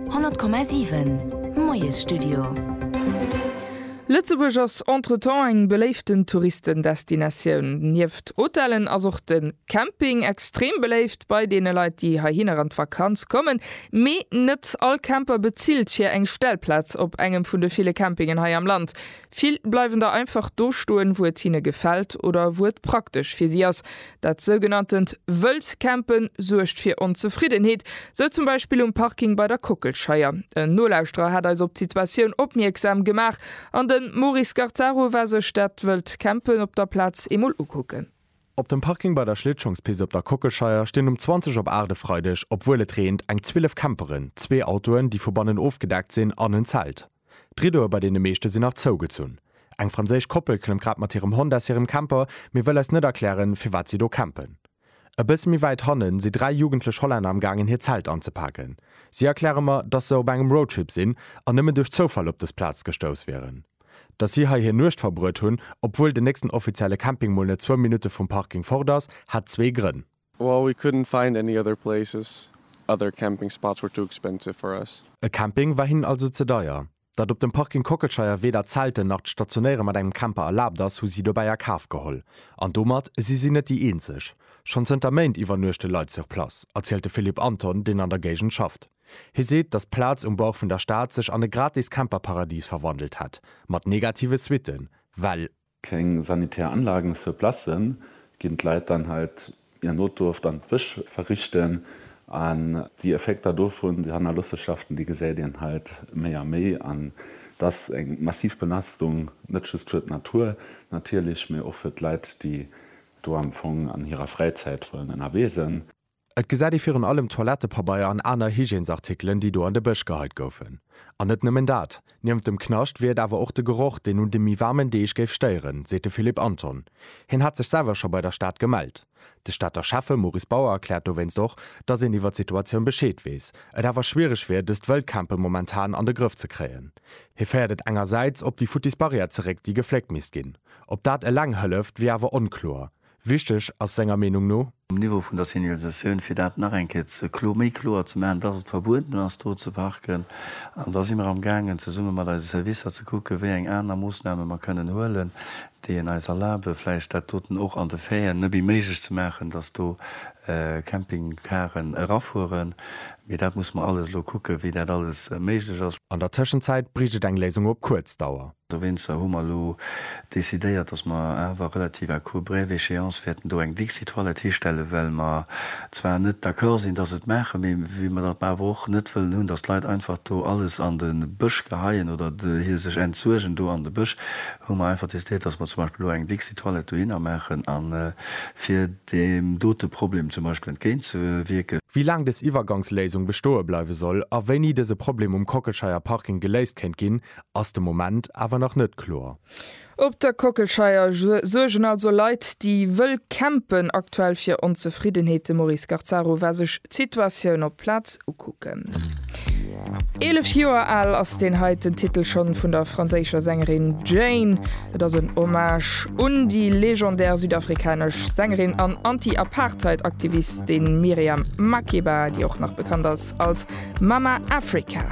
100,7 Moiesstudio Lëtzebuerg ass entretemps eng beléiften Touristendestinatioun. Nieft Hotellen ass och de Camping extrem beléift bei deene Leit, déi heihinner an d'Vakanz kommen. Mee net all Camper bezilt fir eng Stellplaz op engem vun de ville Campingen hei am Land. Vill bleiwen da einfach do stoen, wou et hinne gefält oder wou et praktesch fir si ass. Dat sougenanntent wëllt Campen suergt fir Onzefriddenheet, sou zum Beispill um Parking bei der Kockelscheier. En Nolauschterer hat eis op d'Situatioun opmierksam gemaach an de Maurice Garzaro war sech dat wëllt Campen op der Plaz eemol ukucken. Op dem Parking bei der Schlittschongspist op der Kockelscheier stinn um 20 op 8 e Freideg, obwuel et reent, eng 12 Camperen, zwee Autoen, déi vu bannen ofgedeckt sinn, an en Zelt. D'Riddoe bei deene meeschte sinn nach zougezunn. Eng franséisch Koppel klëmmt grad mat hirem Hond aus hirem Camper, mee wëll eis net erklären, firwat si do campen. E bësse méi wäit hanne si dräi jugendlech Hollänner am gaangen hir Zelt anzepaken. Si erkläre mer, dass se op engem Roadtrip sinn an nëmmen duerch Zoufall op dës Plaz gestouss wieren. Dass si hei hir Nuecht verbruet hunn, obwuel den nächsten offizielle Camping mol net zwou Minutte vum Parking fort ass, hat zwee Grënn. Well we couldn't find any other places, other camping spots were too expensive for us. E Camping war hinnen also ze deier. Datt op dem Parking Kockelscheier weder Zelten nach d'Stationéiere mat engem Camper erlaabt ass, hu si dobäi a Kaf geholl. An domat si si net déi eenzeg. Schonn zënter Méint iwwernuechte Leit sur place, erzielt de Philippe Anton, deen an der Géigend schafft. Hie seet, datt d'Plaz um Bauch vun der Stad sech an e gratis Camperparadis verwandelt hätt, mat negative Suitten, well keng sanitär Anlagen sur place, ginn d'Leit dann halt i an Notdurft an d'Bësch verrichten an déi Effekter dovun, déi Hannerlossenschaften, déi gesäit een halt méi a méi an et ass eng massiv Belastung net just fir d'Natur natierlech, mä och fir d'Leit, déi do am Fong an hirer Fräizäit wëllen ënnerwee sënn. Et gesäit ee virun allem Toilettepabeier an aner Hygiènesartikelen, déi do an de Bësch geheit goufen. An net nëmmen dat, niewent dem Knascht wier et awer och de Geroch, deen un de méi waarmen Deeg géif stéieren, seet de Philippe Anton. Hien hätt sech selwer scho bei der Stad gemellt. De Stater Schäffe Maurice Bauer erkläert dowéinst och, datt een iwwer d'Situatioun Bescheed weess, et awer schwiereg wier, dëst Wëllcampen momentan an de Grëff ze kréien. Hie féiert et engersäits op déi futtis Barrière zeréck, déi gefléckt misst ginn. Ob dat eleng hëlleft, wier awer onkloer. Wichteg ass senger Meenung no. Um Niveau vun der Signalisatioun, fir dat nach eng Kéier ze klo, méi kloer ze maachen, dass et verbueden ass do ze parken. An da si mer am gaangen zesumme mat eise Servicer ze kucke wéi eng aner Moossname mer kënnen huelen, déi en eis erlabe vläicht dat doten och an de Fairen nëbbi méiglech ze maachen, dass do Campingcaren erafueren. Mee dat musse mer alles elo kucke wéi dat alles méiglech ass. An der Tëschenzäit bréicht et eng Léisung op kuerz Dauer. Dowéinster hu mer elo decidéiert, dass mer awer relativ à court brève échéance wäerten do eng Dixit Toilette histellen, well mer zwar net d'accord sinn, dass et maachen, mee wéi mer dat awer och net wëllen hunn, dass d'Leit einfach do alles an de Bësch geheien oder hir sech entsuergen do an de Bësch, hu mer einfach decidéiert, dass mer zum Beispill elo eng Dixit Toilette dohinner maachen, a fir deem dote Problem zum Beispill entgéintzewierken. Wéi laang dës Iwwergangsléisung bestoe bleiwe soll a wéini dëse Problem um Kockelscheier Parking geléist kéint ginn, ass de Moment awer nach net kloer. Op der Kockelscheier suergen also Leit, déi wëll campen, aktuell fir Onzefriddenheet. De Maurice Garzaro war sech d'Situatioun op Plaz ukucken. Eelef Joer al ass deen heiten Titel schonn vun der franséischer Sängerin Jane. Et ass en Hommage un déi legendär südafrikanesch Sängerin an Anti-Apartheid-Aktivistin Miriam Makeba, déi och nach bekannt ass als Mama Africa.